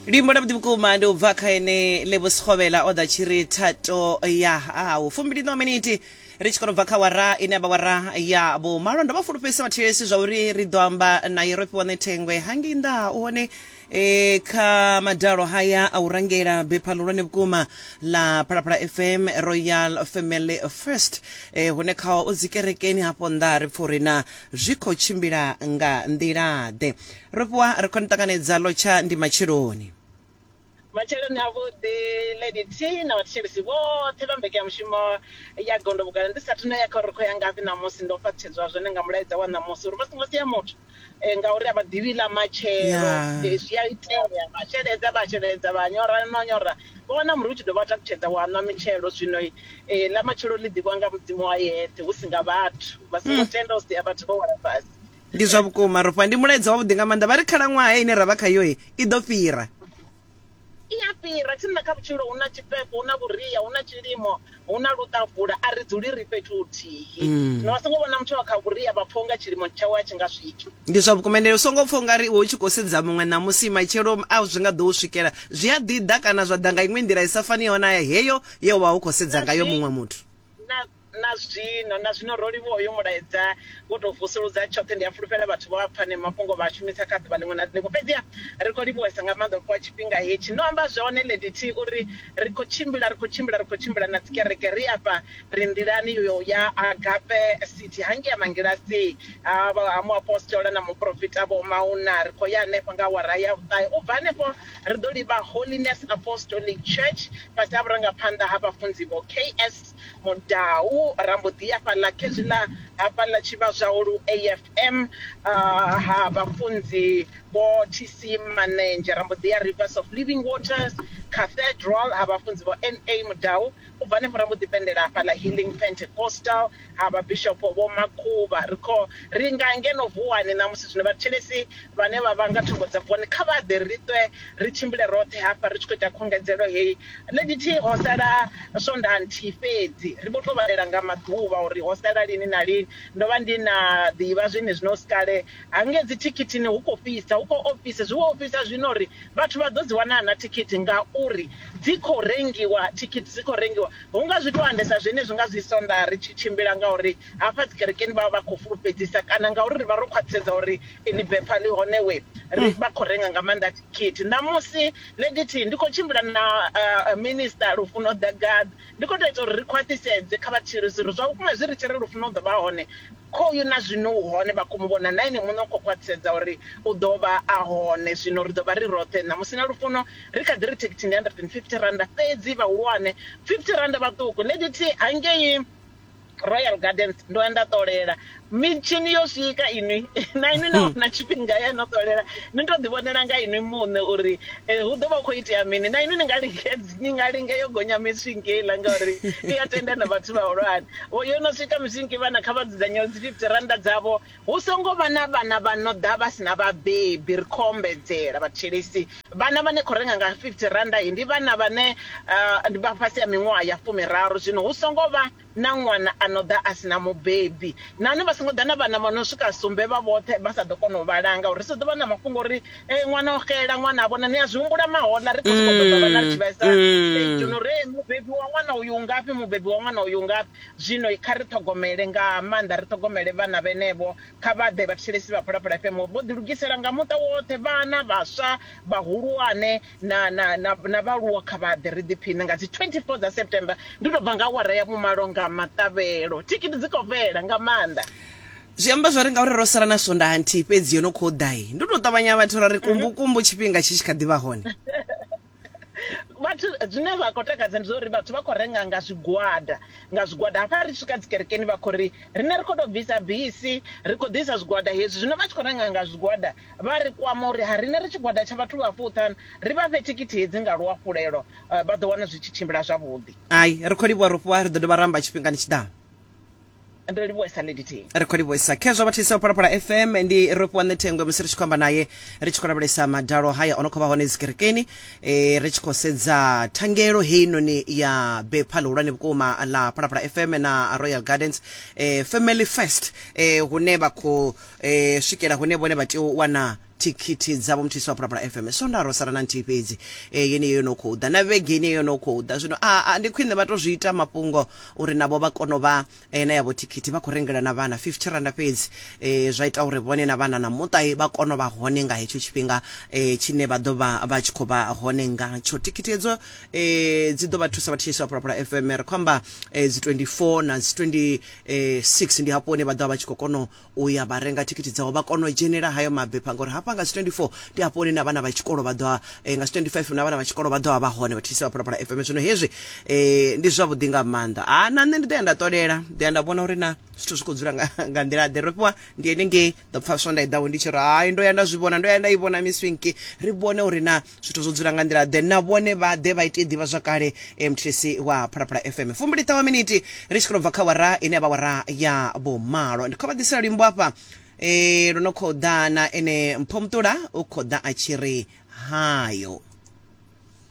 luimbo lwavhuḓi vhukuma ndi u bva kha ene levho sikgovhela o ḓa tshi ri thato ya hau fumbiliṋa miniti ri tshi kono bva kha wara ine avha wara ya vho malo ndo vha fulufhedzisa vhathetshelesi zwa uri ri ḓo amba naye ro fhiwa ṋethengwe hangei nnḓa ha u hone e kha madalo haya a u rangela bepha ḽihulwane vhukuma ḽa phalaphala fm royal family first e, hune khao o dzikerekeni hafho nnḓa ri pfha uri na zwi khou tshimbila nga nḓila-ḓe Ro fhiwa ri khou ni ṱanganedza ḽo tsha ndi matsheloni. Matsheloni avhuḓi Lady T na vhathetshelesi vhoṱhe vha mbekanyamushumo ya Gondo Vhugala. Ndi sathu na ya kha uri ri khou ya ngafhi ṋamusi, ndo fhaṱutshedzwa zwone nga mulaedza wa ṋamusi uri vha songo sia muthu ngauri a vha ḓivhi ḽa matshelo. Zwi a itea vha sheledza vha sheledza vha nyora no nyora vha wana muri u tshi dovha wa takutshedza wa nwa mitshelo. Zwino ḽa matshelo ḽi ḓivhiwa nga Mudzimu a yeṱhe hu si nga vhathu. Vha songo tenda u sia vhathu vho wela fhasi. ndi zwa vhukuma rofha ndi mulaedza wavhuḓi nga maanḓa vha ri khalaṅwaha ine ra vha khayoe i ḓo fhira i ya fhira tsini na kha vhutshilo hu na tshifhefho hu na vhuria hu na tshilimo hu na luṱavula a ri dzuli ri fhethu huthihi mm. na vha songo vhona muthu wa kha vhuria vha pfha unga tshilimo tshawe a tshi nga swiki ndi zwa vhukuma ende u songo pfha ungari iwe u tshi khou sedza muṅwe ṋamusi matshelo a zwi nga ḓo u swikela zwi a ḓiḓa kana zwa ḓa nga iṅwe nḓila i sa faniho na heyo ye wa u khou sedza ngayo muṅwe muthu Na zwino, na zwino, ro livhuwa uyo Mulaedza wo tou vusuludza tshoṱhe. Ndi a fulufhela vhathu vho a pfa aneo mafhungo vha a shumisa kha ḓuvha ḽiṅwe na ḽiṅwe. Fhedziha ri khou livhuwesa nga maanḓa u fhiwa tshifhinga hetshi. No amba zwone, Lady T. U ri, Ri khou tshimbila, ri khou tshimbila, ri khou tshimbila na dzikereke. Ri afha, ri nḓilani yo ya Agape City, hangei ha Mangilasii, ha, ha muapostola na muporofita Vho Mauna. Ri khou ya henefho nga awara ya vhuṱahe. U bva henefho, ri ḓo livha Holiness Apostolic Church, fhasi ha vhurangaphanḓa ha Vhafunzi Vho K. S. Mudau ra mbo ḓi ya fhaḽa khezwi ḽa hafhaḽa tshivhazwau lu AFM ha vhafunzi vho TC Manenzhe, ra mbo ḓi ya Rivers of Living Waters Cathedral ha vhafunzi vho NA Mudau, u bva henefho ra mbo ḓi pendela hafhaḽa Healing Pentecostal ha vhabishopo vho Makhuvha. Ri khou ri nga ngeno Vuwani ṋamusi zwino vhathetshelesi Vhane vha vha nga thungo dza Vukoni kha vha ḓe ri ṱwe ri tshimbile roṱhe hafha ri tshi khou ita khungedzelo heyi. Nṋe ndi thi ho sala Swondaha nthihi fhedzi, ri vho tou vhalela nga maḓuvha uri ho sala lini na lini. Ndo vha ndi na ḓivha zwenezwino hu si kale. Hangei dzithikithini hu khou fhisa, hu khou ofhisa, zwi vho ofhisa zwino uri vhathu vha ḓo dzi wana na thikhithi ngauri dzi khou rengiwa, thikhithi dzi khou rengiwa. Hu nga zwi tou andesa zwenezwi nga zwi Swondaha ri tshi tshimbila ngauri Hafha dzikerekeni vha vha vha khou fulufhedzisa kana ngauri ri vha ro khwaṱhisedza uri inwi bepha ḽi hone we ri vha khou renga nga maanḓa thikhithi. Ṋamusi, Lady T, ndi khou tshimbila na Minisiṱa Lufuno Dagad. Ndi khou tou ita uri ri khwaṱhisedze kha vhatshilisi uri zwa vhukuma zwi ri tshi ri Lufuno u ḓo vha hone, khoyu na zwino u hone, vha khou mu vhona, na ene muṋe u khou khwaṱhisedza uri u ḓo vha a hone. Zwino ri ḓo vha ri roṱhe ṋamusi na Lufuno. Ri kha ḓi ri thikhithi ndi R150, fhedzi vhahulwane, R50 vhaṱuku. Lady T, Hangei. royal gardens ndo ya nda ṱolela mitshini yo swika inwi na inwi na wana tshifhinga ya no ṱolela ni to ḓi vhonela nga inwi muṋe uri eh, hu ḓo vha khou itea mini na inwi ni nga lingedzi ni nga linge yo gonya miswinki heiḽa ngauri i ya tenda na vhathu vhahulwane Vho- yo no swika miswinki vhana kha vha dzudzanyeo dzi 50 rannda dzavho Hu songo vha na vhana vha no ḓa vha si na vhabebi, ri khou ombedzela vhathetshelesi. Vhana vha ni khou renga nga R50 he ndi vhana vhane ndi vha fhasi ha miṅwaha ya fumiraru. Zwino hu songo vha na ṅwana a no ḓa a si na mubebi. Nahone vha songo ḓa na vhana vha no swika sumbe vha vhoṱhe vha sa ḓo kona u vha langa, uri ri sa ḓo vha na mafhungo uri ṅwana o xela, ṅwana a vhona. Ni a zwi humbula mahoḽa? Ri khou sokou ṱoḓa vhana ri tshi vhesa stage uri mubebi wa ṅwana uyu u ngafhi, mubebi wa ṅwana uyu u ngafhi? Zwino kha ri ṱhogomele, nga maanḓa ri ṱhogomele vhana vhenevho. Kha vha ḓe, vhathetshelesi vha Phalaphala FM vho ḓilugisela nga muṱa woṱhe, vhana, vhaswa, vhahulwane na, na, na, na vhaaluwa. Kha vha ḓe, ri ḓiphiṋe nga dzi 24 dza September. Ndi tou bva nga awara ya vhumalo nga maṱavhelo. Thikhithi dzi khou fhela nga maanḓa. Zwi amba zwo ri ngauri ro sala na swondaha nthihi fhedzi yo no khou ḓa, ndi u tou ṱavhanya vhathu ra ri kumbukumbu tshifhinga tshi tshi kha ḓi vha hone. vhathu zwine vha khou takadza ndi zwa uri vhathu vha khou renga nga zwigwada nga zwigwada hafha ri swika dzikerekeni vha khou ri riṋe ri khou tou bvisa bisi ri khou ḓisa zwigwada hezwi zwino vha tshi khou renga nga zwigwada vha ri kwama uri ha riṋe ri tshigwada tsha vhathu vha fuṱhanu ri vha fhe thikhithi hedzi nga luhafhulelo vha ḓo wana zwi tshi tshimbila zwavhuḓi. Hai, ri khou livhuwa ro fhiwa, ri ḓo dovha ra amba tshifhingani tshi ḓaho. ndo livhuwesa lady t ri khou livhuwesa khezwo vha thisa u phalaphala fm ndi ro fhiwa ṋethengwe musi ri tshi khou amba naye ri tshi khou lavhelesa madalo haya o no khou vha hone dzikerekeni e, ri tshi khou sedza thangelo heinoni ya bepha ḽihulwane vhukuma ḽa phalaphala fm na royal gardens e, family first e, hune vha khou e, swikela hune vhone vha tea u wana Thikhithi dzavho muthu Yesu wa Phalaphala FM. Swondaha ro sala na nthihi fhedzi, e, yeneyo yo no khou ḓa, na vhege yeneyo yo no khou ḓa. Zwino a, a, ndi khwiṋe vha tou zwi ita mafhungo uri navho vha kone u vha e, na yavho thikhithi. Vha khou rengela na vhana fifty randa fhedzi, e, zwa ita uri vhone na vhana na muṱa e, vha kone u vha hone nga hetsho tshifhinga e, tshine vha ḓo vha vha tshi khou vha hone ngatsho. Thikhithi hedzo e, dzi ḓo vha thusa vhathu Yesu wa Phalaphala FM. Ri khou amba e, dzi 24 na dzi 26 ndi hafho hune vha ḓo vha vha tshi khou kona u ya vha renga thikhithi dzavho vha kona u dzhenela hayo mabepha ngori hafha nga 24 ndi hafho hune na vhana vha tshikolo vha ḓo eh, nga 25 na vhana vha tshikolo vha ḓo vha hone vha thithisa vha phalaphala FM zwino hezwi eh, ndi zwavhuḓi nga maanḓa a ah, na nṋe ndi ḓo ya nda ṱolela ḓo ya nda vhona uri na zwithu zwi khou dzula nga, nga nḓila ḓe ro fhiwa ndi ene ngei ḓo pfaswa nda i ḓaho ndi tshi ri hai ndo ya nda zwi vhona ndo ya nda i vhona miswinki ri vhone uri na zwithu zwo dzula nga nḓila ḓe na vhone vha ḓe vha ite ḓivha zwakale eh, mthilisi wa phalaphala fm fumbili ṱawa miniti ri tshi khou bva kha wara ine ya vha wara ya vhumalo ndi khou vha ḓisela luimbo afha eh, lwo no khou ḓa na ene mpho muṱula u khou ḓa a tshi ri hayo